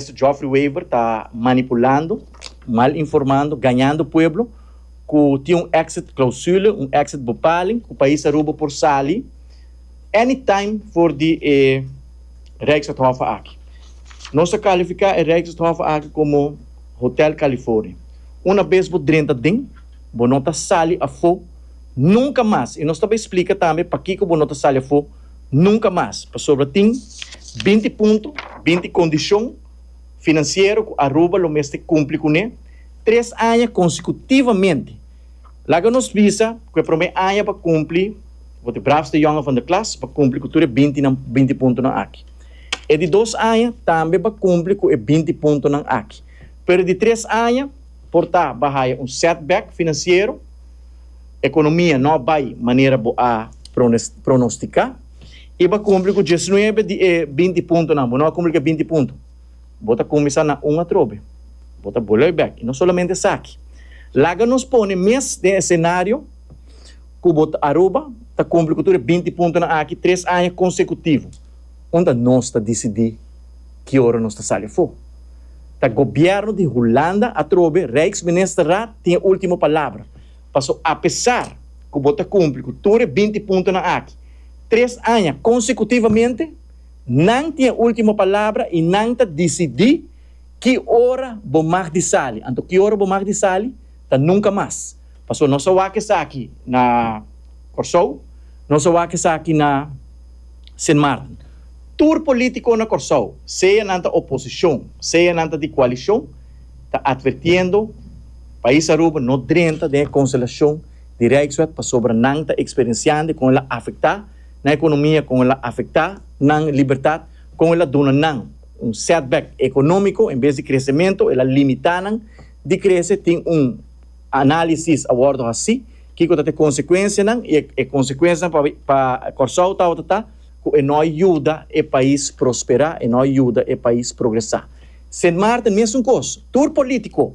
Mister Geoffrey Wever ta manipulando, mal informando, gañando pueblo cu tin un exit clausule, un exit bepaling cu pais Aruba por sali any time for di e Rijksstadhof aki. Nos a califica e Rijksstadhof aki como Hotel California. Una bes bo drenta den, bo no ta sali afo nunca mas y nos ta bay splica tambe pakico bo no ta sali afo Nunka mas, pasobra tin binti punto, binti kondishon finansiero ku Aruba lo mester kumpli kuné tres aña konsekutivamente. Laga nos bisa ku e promé aña pa kumpli, bo te braafste jònger van de klas, pa kumpli ku tur e bintinan, binti puntonan aki. E di dos aña tambe pa kumpli ku e binti puntonan aki. Pero e di tres aña. Por ta bo a haya un setback financiero, economia no a bay manera bo a pronostica y bo a cumpli cu diesnuebe di e binti puntonan, bo no a cumpli cu e binti punto, bo ta cuminsa na un atrobe, bo ta bolui bek. Y no solamente esaki, laga nos pone mes den escenario cu bo ta Aruba ta cumpli cu tur e binti puntonan aki tres aña consecutivo, unda nos ta dicidi. ki ora nos ta sali afó. Ta gobièrnu di Hulanda atrobe, Rijksministerraad, tin e último palabra. Paso apesar ku bo ta kumpli ku tur e binti puntonan aki tres aña konsekutivamente, nan tin e último palabra i nan ta disidí ki ora bo mag di sali. Anto ki ora bo mag di sali ta nunka mas. Paso nos a wak esaki na Kòrsou, nos a wak esaki na. Sint Maarten. Tur polítiko na Kòrsou, sea nan ta oposishon, sea nan ta di koalishon, ta atvertiendo Pais Aruba no drenta den e konselashon di Rijkswet pasobra nan ta eksperensiando e kon el a afektá nan ekonomia, kon el a afektá nan libertat, kon el a duna nan un setback ekonómiko en bes di kresementu el a limitá nan di krese tin un Análisis a wòrdu hasí, Kiko ta e konsekuensianan i e konsekuensianan pa Kòrsou tabata ku e no a yuda e pais prosperá, e no a yuda e pais progresá. Sint Maarten mesun kos, tur polítiko,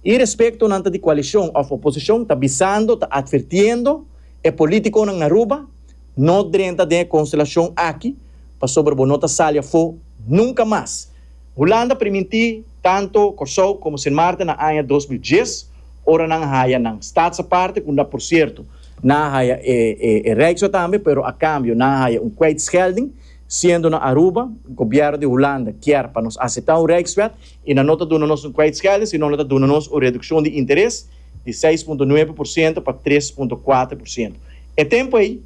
irespekto nan ta di koalishon òf oposishon, ta bisando, ta atvertiendo e polítikonan na Aruba, No drenta den e konstelashon aki pasobra bo no ta sali afó nunka mas. Hulanda primintí tantu Kòrsou komo Sint Maarten na aña dos mil dies ora nan haya nan stats aparte ku na por sierto nan a haya e Rijkswet tambe pero a kambio nan a haya un kwijtschelding siendo na Aruba gobièrnu di Hulanda kier pa nos aseptá un Rijkswet i nan no ta duna nos un kwijtschelding sino nan ta duna nos un redukshon di interes di seis punto nuebe por siento pa tres punto kuater por siento. E tempu ei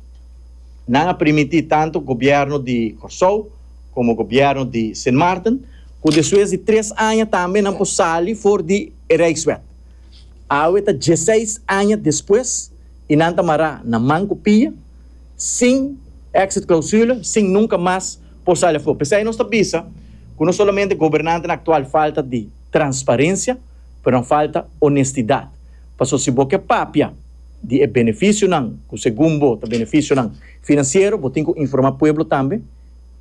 nan a primintí tantu gobièrnu di Kòrsou. komo gobièrnu di Sint Maarten, ku despues di tres aña tambe nan por sali for di e Rijkswet. Awe ta dieseis aña despues i nan ta mará na man ku pia, sin exit-clausule, sin nunka mas por sali afó. P'esei nos ta bisa ku no solamente gobernantenan aktual falta di transparensia, pero nan falta onestidat. Pasobra si bo ke papia di e benefisionan ku segun bo ta benefisionan finansiero, bo tin ku informá pueblo tambe.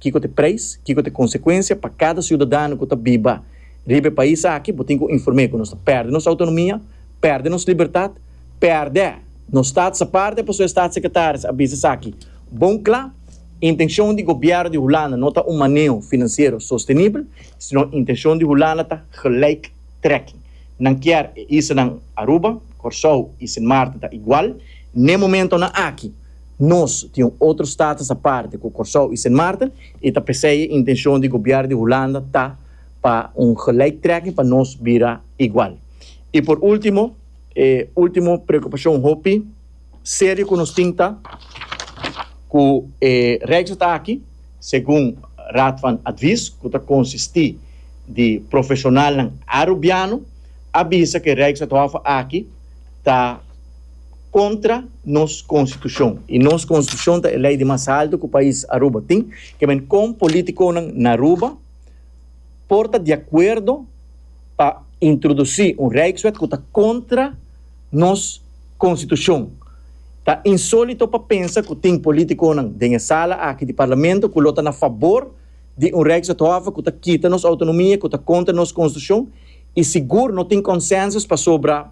Kiko t'e preis, kiko t'e konsekuensia pa kada siudadano ku ta biba riba e pais aki? Bo tin ku inform'é ku nos ta pèrdè nos outonomia, pèrdè nos libertat, pèrdè nos stat saparte pasobra e stat sekretaris a bisa esaki bon kla, Intenshon di gobièrnu di Hulanda no ta un maneo finansiero sostenibel, sino intenshon di Hulanda ta gelijktrekking. Nan kier e islanan Aruba, Kòrsou i Sint Maarten ta igual n'e momentonan aki. Nos tin un otro status aparte cu Corsou y Sint Maarten y ta pesey e intencion di Gobier di Hulanda ta pa un gelijktrekking pa nos bira igual. Y por ultimo, e ultimo preocupacion hopi serio cu nos tin ta cu e Rijkswet aki, segun Raad van Advies cu ta consisti di profesionalnan Arubiano, a bisa cu e Rijkswethof aki ta. kontra nos konstitushon i nos konstitushon ta e lei di mas haltu ku pais Aruba tin, ke men kon politikonan na Aruba por ta di akuerdo pa introdusí un rijkswet ku ta kontra nos konstitushon. Ta insólito pa pensa ku tin politikonan den e sala aki di parlamento ku lo ta na fabor di un rijkswethof ku ta kita nos outonomia ku ta kontra nos konstitushon i sigur no tin konsensus pasobra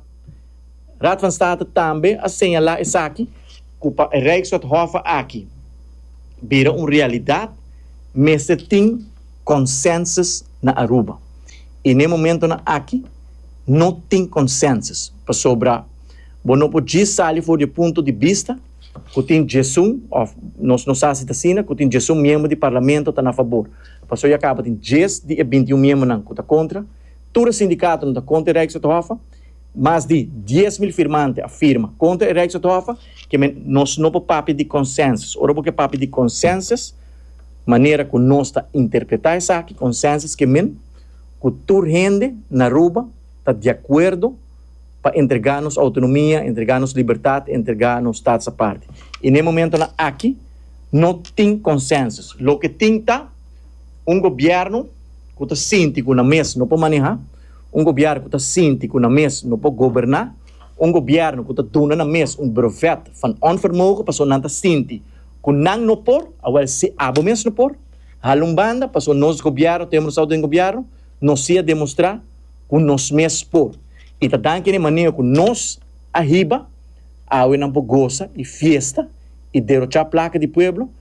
Raad van State tambe a señala esaki cu pa e Rijkswethofe aki bira un realidad mester tin consensus na Aruba y n'e momentonan aki no tin consensus pasobra bo no por djis sali for di e punto di bista cu tin diesun of nos no sa si ta asina cu tin diesun miembro di Parlamento ta na fabor pasobra ya caba tin dies di e bintiun miembronan cu ta contra tur e sindicatonan ta contra e Rijkswethofe Mas di dies mil firmante a firma kontra e Rijkswethof ke men nos no por papia di konsensus. Ora bo ke papia di konsensus, manera ku nos ta interpretá esaki, konsensus ke min ku tur hende na Aruba ta di akuerdo pa entregá nos outonomia, entregá nos libertat, entregá nos stats aparte. I na e momentunan aki no tin konsensus. Loke tin ta un gobièrnu ku ta sinti ku nan mes no por manehá. Un gobièrnu ku ta sinti ku nan mes no por goberná, un gobièrnu ku ta duna nan mes un brevet van onvermogen pasobra nan ta sinti ku nan no por, awèl si abo mes no por, hala un banda, pasobra nos gobièrnu ta demostrá ku den gobièrnu nos siga demostrá ku nos mes por. I ta dan kende manera ku nos a hiba, awe nan por gosa i fiesta i derochá plaka di pueblo,